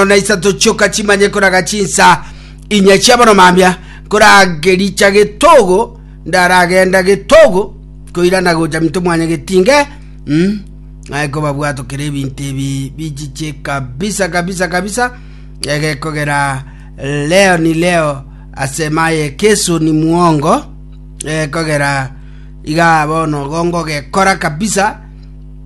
isano na isato chioka chimanye koraga chinsa inya chi'abaromambia, koragericha getogo, ndaragenda getogo, koirana gocha minto mwanya getinge, mm, aye kobabwato kere ebinto ebi bichiche kabisa kabisa kabisa, egekogera leo ni leo asemaye kesu ni muongo, egekogera iga bono gongo gekora kabisa,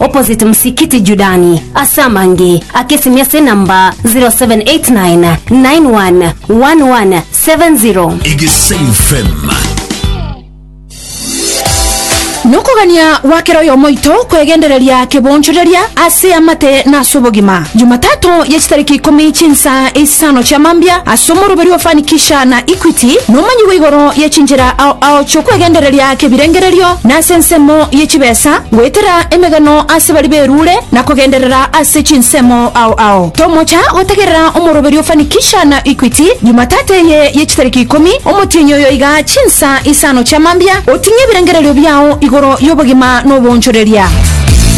opposite Msikiti Judani, ase amange ake esimi ase enamba 0789 911170. Egesain FM. Nokogania gwa kera oyomo oito kwegendereria kebonchoreria ase amate na ase obogima. Jumatatu ye chitariki ikomi chinsa isano chia mambia ase omoruberi o Fanikisha na Equity nomanyigwe igoro ye chinchera ao ao chiokwegendereria kebirengererio na ase ensemo ye chibesa, goetera emegano ase baria berure na kogenderera ase chinsemo ao ao. Tomocha gotegerera omoroberio Fanikisha na Equity Jumatatu eye ye chitariki ikomi, omotienyi oyo iga chinsa isano chia mambia, oting'e ebirengererio biao igoro y'obogima na oboonchoreria.